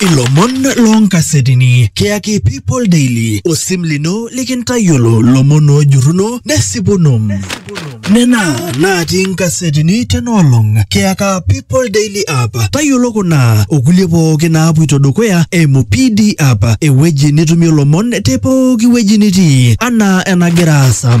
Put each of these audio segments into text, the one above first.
Ilomon loonkasetini kiyaki People Daily osim lino likintayiolo lomon oojurruno nesipuno. Nena natii nkasetini tenoolong kiyaka People Daily app. Tayiolo kuna okulie pooki naapuito dukuya eimu PD app ewueji nitumie lomon te pooki wueji nitii anaa enagira aasa.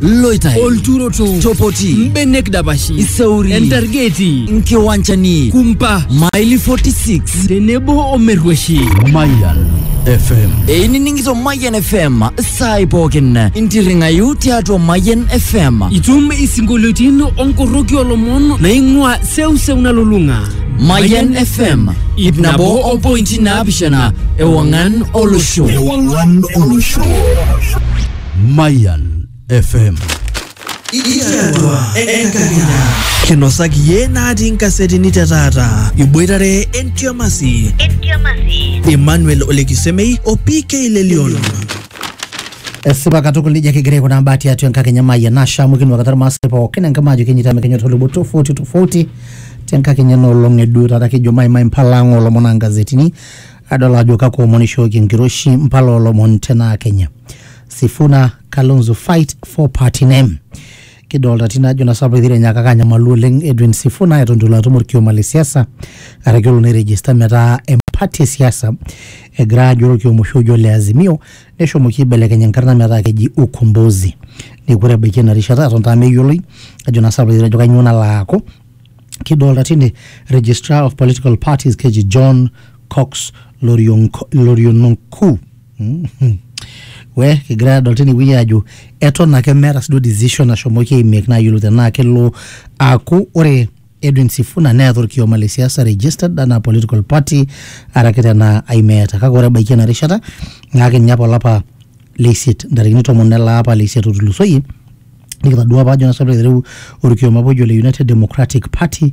loitai olturoto chopoti mbenek dapashi iseuri entargeti nkiwanchani kumpa maili 46 tenebo omerrueshi Mayan FM. einining'ito mayan fm saai pookin intirring'ayu tiatua mayan fm itum isinkolioitin onkorroki olomon naing'ua seuseu nalulung'a mayan fm ip nabo ompointi naapishana ewang'an olosho Ewangan Olosho. Mayan FM. Ikiatua enkakenya. Kinosaki iyie natii nkasetini te taata. Iboitare entiamasi. Emmanuel Olekisemei o PK Lelion. esipa katukul nejia kigira aikunaa mbaa tiatua enkakenya maayia nashamu kinuakata irmaasai pookin enkima ajo kenyita mekenyo tolubo tofauti tofauti tenkakenya enoolong eduo taata kejo maimai mpala ang olomon aa ngazetini adol ajo kakwa omon ishooki enkiroshi mpala olomon tenaa kenya sifuna kalonzo fight for party name kidolta tine ajo nasapa etii enyakaka anyamalu oleng edwin sifuna eton itu elo atum orkioma le siasa araki olo nairegista metaa empati e siasa egira ajo orkioma oshi ojo ole azimio neshomoki aibelekeny enkarna metaa keji ukombozi neeku ore ebaiki ena rishata eton taa meyioloi ajo nasapa etejo kanyio nalo aaku kidolta tine registrar of political parties keji john cox Lorionko- loriononku Mm. we kigira adol tine wueji ajo eton ake meeta siduo decision nashomoki aimake nayiolou tenaa kelo aaku ore edwin sifuna neeta orkioma le siasa registered anaa political party araki tenaa aimeeta kake ore ebaiki ena rishata naa kinya apa olapa leisiet ntarikini tomon ele apa leisiet otulusoyie nikitadua apa ajo nasapita aiteru orkioma apa ojo le United Democratic Party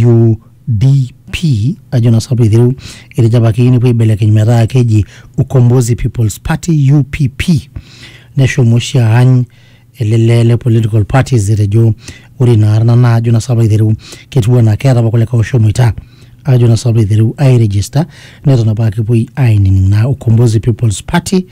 UDP ajo nasapita aiteru etejo apa keyieu nepuo aibelekeny metaa keji Ukombozi People's Party UPP neshomo oshi aany ele lee le political parties etejo ore ina arna naa ajo nasapita aiteru ketiu anaa keeta apa kulikae oshomoita ajo nasapita aiteru airegister neton apa aa kepuoi ainining naa Ukombozi People's Party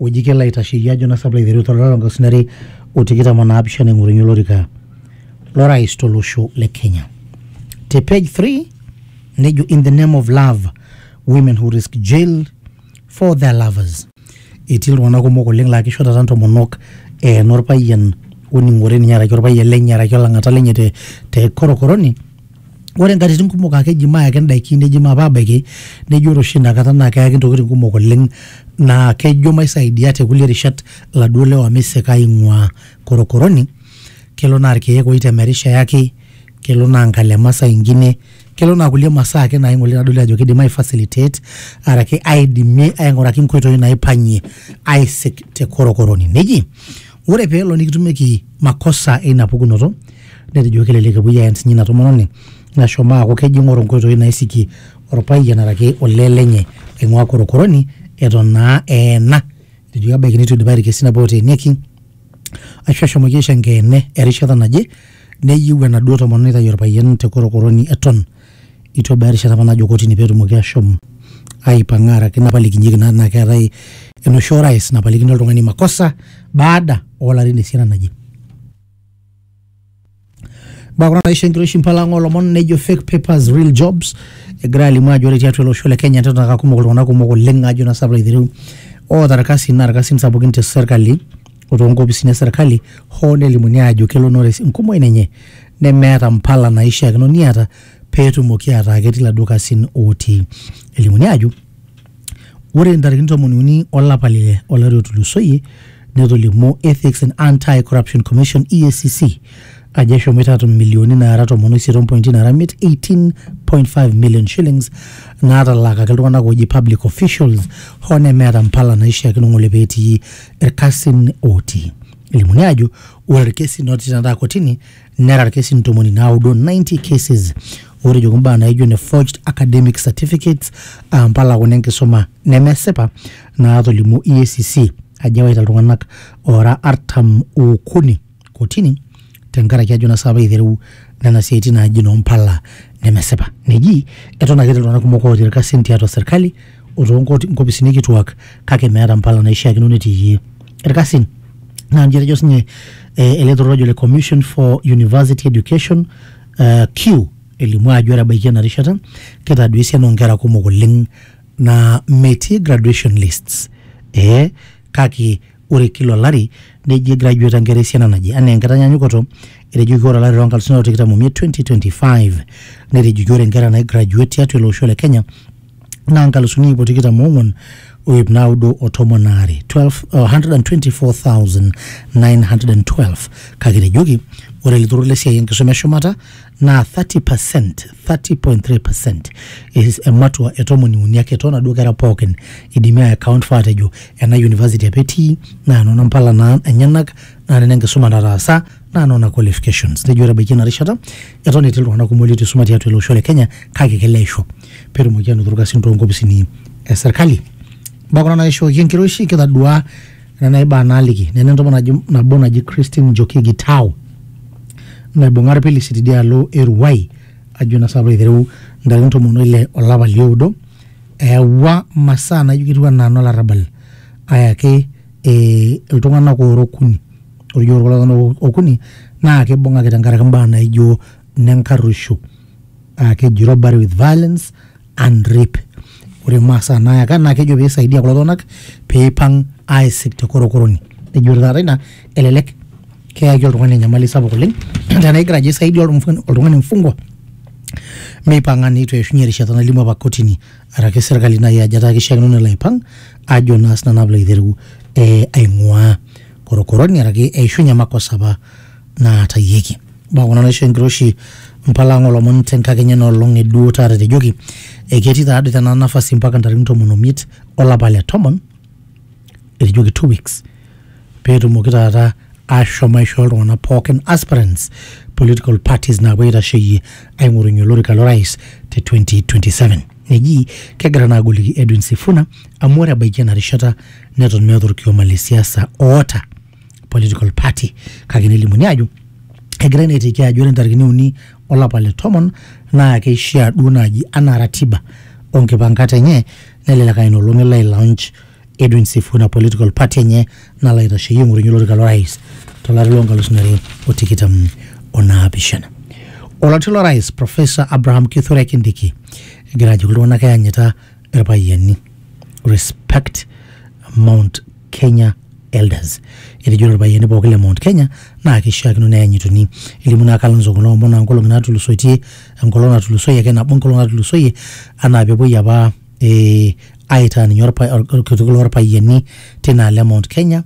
oji kelo aitasheyie ajo nasap laiteru to lari loonkalusuni are o tikitam o naapishana aing'orunye olorika lorais tolosho le Kenya. Te page 3 nejo in the name of love women who risk jail for their lovers. Etii iltung'anak kumok oleng laa kisho taata ntomonok eena orpayian oning'ore ninye araki orpayian lenye araki olang'ata lenye te, te korokoroni ore nkatitin kumok ake eji mayaki ndaiki neji maape abaiki neji ore oshi inakata naa keyaki ntokitin kumok oleng naa kejo maisaidia te kulie rishat laduo lewa meisika aing'uaa korokoroni kelo naa irkeek oitemerisho eyaki kelo naa nkalema saa ingine kelo naa kulie masaa ake naing'u oleng nadoli ajo kidim ae facilitate araki aidimie aing'uraki nkoitoi naipang'ie aisik te korokoroni neji Ore pee elo nikitumieki makosa eina pukunoto, netejo kelelek epuoi aen sinye ina tomononi nashomo aaku kejo eing'oru nkoitoi naisikie olpayian araki olee lenye aing'uaa korokoroni eton naa eena. Etejoki ebaiki neitu eidipayu ilkesin apa ooteenieki aashu eshomoki aisho enkeene erishata naje neyieu enaduo tomononi neitayu olpayian te korokoroni eton. Eitu ebaya erishata apa najo kotini pee etumoki ashom aipang'a araki napalikinyeki naa tenaa keetae enoshi orais napalikini oltung'ani makosa baada oolarin esiana naje. Mbaa kuna naisho enkiroshi mpala ang' oolomon nejo fake papers real jobs egira alimu ajo ore tiatua ele osho le Kenya neton aa kumok iltung'anak kumok oleng' ajo naa sinanu piilo aitereu oota irkasin naa irkasin sapukin te serkali o toonkopisini e serkali hoo nelimuni aajo kelo nores enkumoi nenye nemeeta mpala naaishiakino niata pee etumoki ataa ketii iladuo kasin ootii. Elimuni aajo ore ntarikini tomon uni olapa le ile olari otulusoyie netolimuo Ethics and Anti-Corruption Commission EACC ajo eshomoita aatum milioni naara tomon oisiet ompointi naara imiet 18.5 million shillings naatalaakaki iltung'anak ooji public officials hoo nemeeta mpala naaishiakino ng'ole pee etii irkasin ootii. Elimuni aajo ore irkesin ootii tenakata kotini nera irkesin ntomoni naudo 90 cases ootejoki imbaa naaijo ne forged academic certificates aa mpala kuna enkisuma nemesipa naatolimuo EACC ajo ewaita iltung'anak oora artam ookuni kotini tenkaraki ajo nasa apa eitereu nena siaitin naaji noo mpala nemesipa. Neji eton ake etii iltung'anak kumok ootii irkasin tiatua serkali o too nkoti- nkopisini kituak kake meeta mpala naishiakino netiiyie irkasin. Naa nji etejo sinye eh, ele turrur ojo le Commission for University Education eh, CUE elimu ajo ore ebaiki ena rishata kitadoyio esiana oo nkera kumok oleng naa metii graduation lists. Eh, kake Ore kila olari neji egraduate nkera esiana naje. Anaa enkitanyanyukoto, etejoki ore olari loo nkalusuni are o tikitam omiet, 2025, netejoki ore nkera naigraduate tiatua ele osho le Kenya naa nkalusuni iip o tikitam oong'uan o iip naudo o tomon aare, 12 uh, 124,912, kake etejoki ore ele turrur le siai enkisuma e shumata naa 30 percent 30.3 percent is ematua e tomoni uni ake toonaduo kera pookin idimi ai account for atejo ena university apa etii naa nona mpala naa enyenak naa nena enkisuma nataasa naa nona qualifications nejo ore ebaiki ena rishata eton etii iltung'anak kumok leitu isuma tiatua ele osho le kenya kake kelo aisho petumoki anoto irkasin toonkopisini e serkali imbaa kuna naishooki enkiroshi kitadua Nena aibaa naaliki nena entomononi nabo naji Christine Njoki Gitau naibung'a ilpilisi tidialo e Ruai ajo naa sii aitereu ntarikini tomon o ile o lapa li oudo eyawua masaa naijo ketiu anaa nolarrabal ayaki iltung'anak oora okuni. Ore ijo ore kulo tung'anak okuni naa keibung'aki tenkaraki imbaa naijo nenkarruisho aa keji robbery with violence and rape ore masaa nayaka naa kejo peisaidia kulo tung'anak peipang aisik te korokoroni nejo ore taata ina elelek keyaki oltung'ani enyamali sapuk oleng tenaa igira ajo aisaidia oltung'ani oltung'ani mfungwa meipang'a neitu eishunye erishata nalimu apa kotini araki sirkali naaji ajo etaa kishiakino nelo aipang ajo naa sinanu naa piilo aitereu eh, aing'ua korokoroni araki eishunye makosa apa naatayieki mbaa kuna naisho enkiroshi mpalang olomon tenkakenya enoolong e duo taata etejoki eketii taadoi tena nafasi mpaka ntarikini tomon omiet olapa le tomon etejoki two weeks peetumoki taata ashom aishoo iltung'anak pookin aspirants political parties naapuo aitasheyie aing'orunye olorika lorais te 2027 neji kegira naa agoliki Edwin Sifuna amu ore ebaiki ena rishata neton meeta orkioma le siasa oota political party kake nelimuni ajo egirai naa aiteki ajo ore ntarikini uni olapa le tomon naa keishaa duo naaji anaa ratiba onkipankat enye nelelek aa ina olong elo ailaunch Edwin Sifuna political party enye nalo aitasheyie aing'orunye olorika lorais tolari loonkalusuni are o tikitam o naapishana. Oloti lorais Professor Abraham Kithure Kindiki egira ajoki iltung'anak eyanyita irpayiani respect Mount Kenya Elders. Etejo lelo payiani pooki le Mount Kenya naa keishiakino neyanyituni. Elimu naa Kalonzo kuna omon aa nkolong'i naatulusoitie, enkolong natulusoyie ake nabo enkolong natulusoyie anaa peepuoi apa eh, aitaa ninye orkitok loo lpayiani tina alo e Mount Kenya.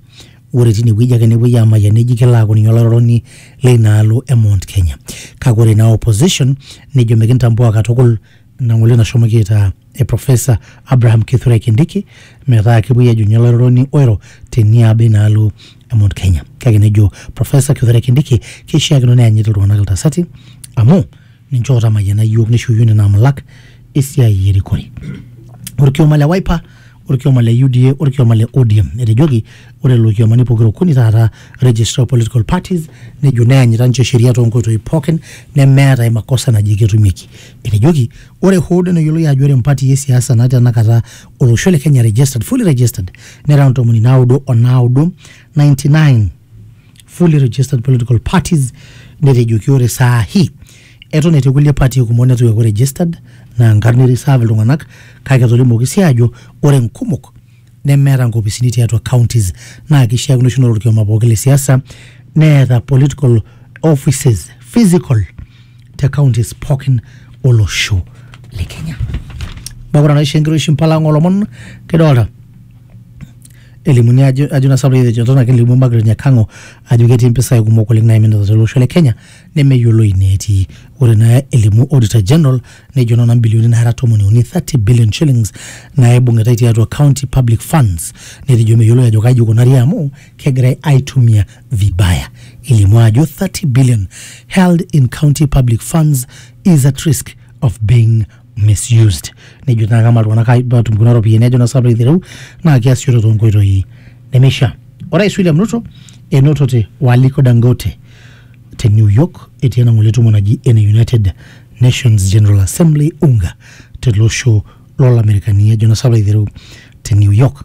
Ore tine wueji ake nepuoi aamayian neji kelo aaku ninye olairoroni leina alo e Mount Kenya. Kake ore naa opposition nejo mikintambua katukul. ina ng'ole nashomoki aitaa e Profesa Abraham Kithurai Kindiki metaa kepuoi ajo ninye olairoroni oiro teniaba inaalo e Mount Kenya. Kake nejo Profesa Kithurai Kindiki keishiakino neyanyit iltung'anak iltasati amu ninche ootamayiana iyiook neishoyio nena amulak esiai erikore. Orkioma le Wiper olkioma le UDA olkioma le ODM. Etejoki ore lelo kiomani pokira okuni taata Registrar of Political Parties nejo neanyita ninche sheria toonkoitoi pookin nemeeta ai makosa naji ketumieki. Etejoki ore hoo duo neyioloi ajo ore mpatii e siasa naa tenakata olosho le Kenya registered, fully registered nera ntomoni naudo o naudo, 99, fully registered political parties netejoki ore saa hii eton etii kulie party kumok netu eeku registered naa nkarn e reserve iltung'anak kake etolimuoki sii aajo ore nkumok nemeeta nkopisini tiatua counties naa kishiakino oshi naa ore orkioma pooki le siasa neeta political offices physical te counties pookin olosho le kenya neeku ore enaisho enkiroshi mpala ng'olomon kidolta elimuni ajo ajo nasa pee etejo tona kelimu Margaret Nyakango ajo ketii impisai kumok oleng naiminita tolosho le Kenya nemeyioloi ineetii. Ore naa elimu Auditor General nejo nona mbilioni naara tomoni uni 30 billion shillings naibung'itai tiatua county public funds netejo meyioloi ajo kaji ikunari amu kegirai aitumia vibaya. Elimu ajo 30 billion held in county public funds is at risk of being misused nejo naa kama iltung'anak ai- atum kuna ropiyiani ajo naa sapuk aitereu naa kiasishore toonkoitoi nemeishaa orais William Ruto enotote o Aliko Dangote te New York etii ena ng'ole tumo naji ene United Nations General Assembly UNGA tele osho lolamerikani ajo naa sapuk aitereu te New York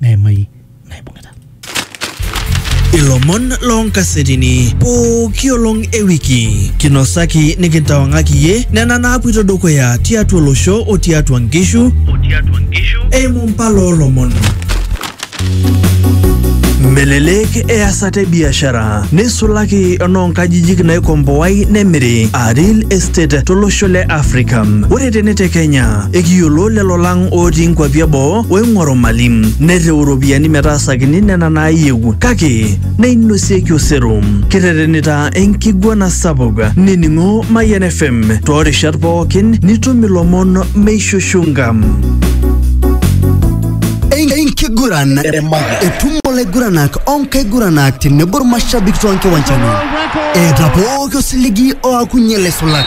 meimai naibung'ita. Ilomon loo nkasetini pooki olong e wiki kinosaki nikintawang'aki iyie nena naapuito dukuya tiatua olosho o tiatua nkishu eimu mpala oo lomon. Melelek easata e biashara neisulaki enoo nkajijik naikomboai nemiri aa real estate tolosho le Africa. Ore tene te Kenya Ekiyiolo lelo lang ootii nkwapi eboo oing'oru mali, nerriu iropiyiani metaasakini nena naayieu kake neinosieki osero. Kiterenita enkiguana sapuk. Nining'o Mayian FM toorishat pookin nitum ilomon meishushunka. Enkiguran etumo olaiguranak onkaiguranak tenebo irmashabik toonkiwanjani eeta pooki osiligi oakunye laisulak.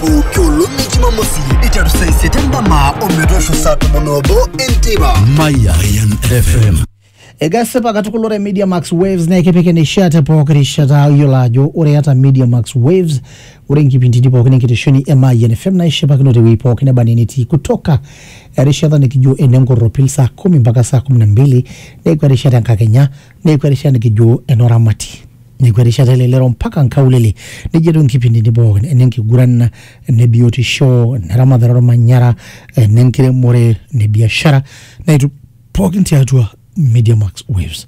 pooki olong e jumamosi iteru saa isiet endama ometoosho saa tomon obo enteipa Mayan FM. Egasipa katukul ore Media Max Waves naa ekipik eneishaa te pooki rishata iyiolo ajo ore iata Media Max Waves ore inkipindini pookin enkitesheni e Mayian FM naishipakino tewueji pookin neba enaa enetii kutoka erishata nikijo ene nkorropil saa kumi mpaka saa kumi na mbili neeku erishata enkakenya Neeku erishata nikijo enoramati. Neeku erishata elelero mpaka nkaulele. Nejo etiu nkipindini pookin ene nkiguran, ene biotisho, ene ramatare olmanyara, ene nkiremore, ene biashara naitu pookin tiatua Media Max Waves.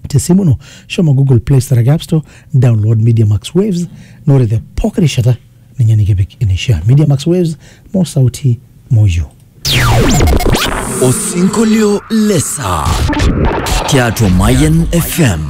Te simu ino shomo Google Play Store araki App Store download Media Max Waves naa ore te pooki rishata ninye nikipik eneishaa media max waves mo sauti moyio Osinkolio le saa tiatua Mayan FM.